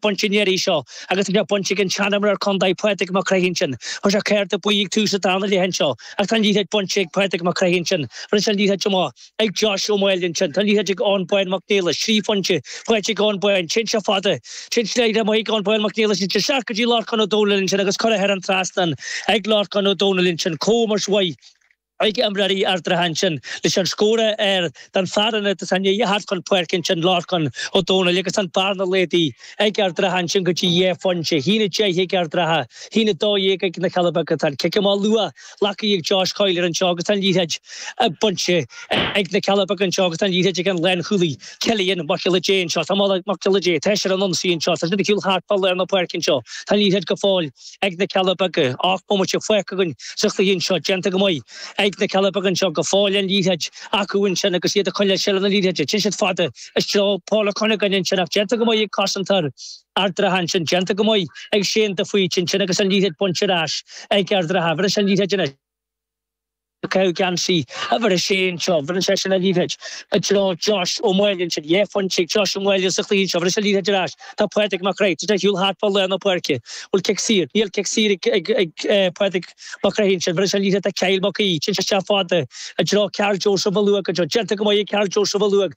baint an iarraidh seo agus tá sé baint ag an seanimreoir contae Pádraig Mac Craith ansin. Tá sé cárta buí ag tús an darna leath anseo ach tá an liathróid bainte ag Pádraig Mac Craith ansin, bheireann sé an liathróid chomh maith ag Josh Ó Maoil ansin, tá an liathróid ag Eoin Bán Mac Néill, trí phointe faighte ag Eoin Bán, téann sé fada sin sna laethanta amuigh ag Eoin Bán Mac Néill ansin, isteach go dtí Lorcán Ó Domhnaill ansin agus curtha thar an trasnán ag Lorcán Ó Domhnaill ansin comh mar is mhaith. ag imreoirí Ard an Rátha ansin leis an scór don fhear atá i ndiaidh a theacht chun páirce ansin Lorcán Ó Domhnaill agus an bearna laghdaithe ag Ard an Rátha ansin go dtí dhá phointe, hAon 10 ag Ard an Rátha, hAon 12 ag na Cealla Beaga. Tá an cic amach luath glactha ag Josh Colyer anseo agus an liathróid bainte ag na Cealla Beaga anseo agus an liathróid ag an lánchúlaí Cillian Mac Giolla Dé anseo. Tá Mac Giolla Dé, tá sé ar an ionsaí anseo, tá siad ag siúl thart fá lár na páirce anseo, tá an liathróid go fóill. ag na Cealla Beaga, ocht mbomaite fágtha againn sa chluiche anseo, déanta go maith ag na Cealla Beaga anseo, go fóill an liathróid acu ansin agus iad ag coinneáil seilbh na liathróide, téann siad fada i dtreo Paul Cunningham ansin ach déanta go maith ag cosantóir Ard an Rátha ansin, déanta go maith ag Shane de Faoite ansin agus an liathróid bainte ar ais ag Ard an Rátha, bhris an liathróid anois. Piocadh geansaí uimhir a sé anseo, bheireann seisean an liathróid i dtreo Josh Ó Maoil ansin, dhá phointe ag Josh Ó Maoil sa chluiche anseo, bheireann sé an liathróid ar ais, tá Pádraig Mac Craith ag siúl thart fá lár na páirce, bhuel cic saor, níl cic saor ag Pádraig Mac Craith ansin, bheireann sé an liathróid do Kyle Mac Aoidh, sin isteach fada i dtreo Karl Joseph Molloy anseo, déanta go maith ag Karl Joseph Mhalouf,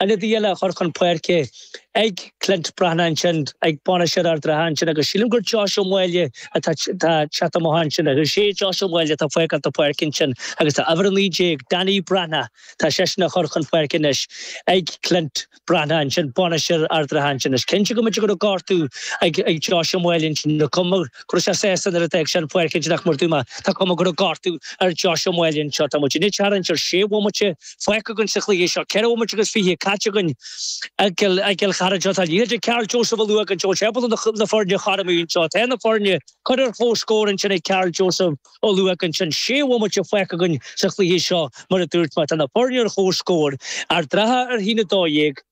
Ionadaí eile á chur chun páirce ag Clint Breathnach ansin, ag bainisteoir Ard an Rátha ansin agus sílim gur Josh Ó Maoile atá atá ag teacht amach ansin agus is é Josh Ó Maoile atá ag fágáil na páirce ansin agus tá uimhir a naoi déag, Danny Breathnach, tá seisean á chur chun páirce anois ag Clint Breathnach ansin, bainisteoir Ard an Rátha ansin. Is cinnte go mb'fhéidir go raibh gortú ag ag Josh Ó Maoile ansin, níl cuma go raibh sé sásta nuair a d'fhág sé an pháirc ansin ach mar a dúirt mé tá cuma go raibh gortú ar Josh Ó Maoile anseo, tá muid i ndiaidh a theacht ionsar sé bhomaite, Fágtha againn sa chluiche seo. Ceithre bhomaite agus fiche caite againn i gCill Charthaigh seo. Tá an liathróid ag Karl Joseph Molloy anseo is é ábalta na foirne a chothromú anseo. Tá na foirne curtha ar comhscór ansin ag Karl Joseph Molloy ansin. Sé bhomaite fágtha againn sa chluiche seo, mar a dúirt mé. Tá na foirne ar comhscór. Ard an Rátha a hAon 12.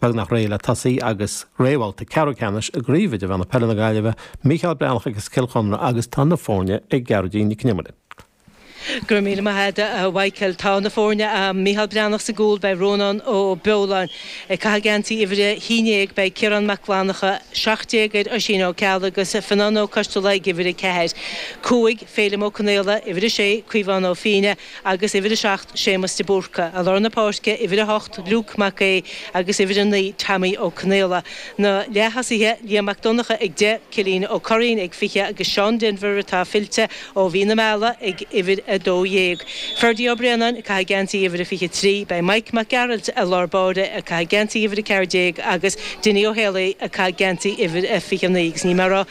Beagnach réidh le tosaí agus réamhbhabhta ceathrú ceannais i gCraobh Idirmheánach Peile na Gaillimhe, Mícheál Breathnach agus Cill Chonla agus tá na foirne ag Gearóidín Nic an Iomaire. Go raibh míle maith agat a Mhichíl. Tá na foirne a'am, Mícheál Breathnach sa gcúl, beidh Rónán Ó Beoláin ag caitheamh geansaí uimhir a hAon Dhéag, beidh Ciarán Mac Fhlannacha, Seacht Déag, ar Oisín Ó Ceallaigh agus Fionán Ó Coistealbha ag uimhir a Ceathair, Cúig, Féilim Ó Conaola, uimhir a Sé, Caomhán Ó Fíne, agus uimhir 7, Séamas de Búrca, i lár na páirce, uimhir 8, Luke Mac Aodh, agus uimhir 9, Teaimí Ó Conaola. Na leath-tosaithe, Liam Mac Donnacha ag 10, Cillín Ó Curraoin ag 20 agus Seán Denvir, atá fillte ó mhí na meala, ag uimhir 12. Ferdie Ó Braonáin ag caitheamh geansaí uimhir a 23. Beidh Mike Mac Gearailt i lár báire ag caitheamh geansaí uimhir 14 agus Dinny Ó hÉalaí ag caitheamh geansaí uimhir a 29 agus ní mór a rá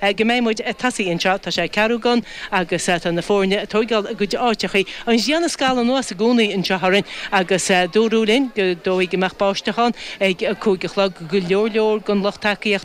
Go mbeidh muid ag tosaí anseo, tá sé ceathrú gan agus tá na foirne ag tóigeáil a gcuid áiteachaí. An ghrian ag scalladh anuas i gcónaí anseo orainn agus dúradh linn ar ndóigh go mbeadh báisteach ann ag a cúig a chlog. Go leor leor den lucht tacaíochta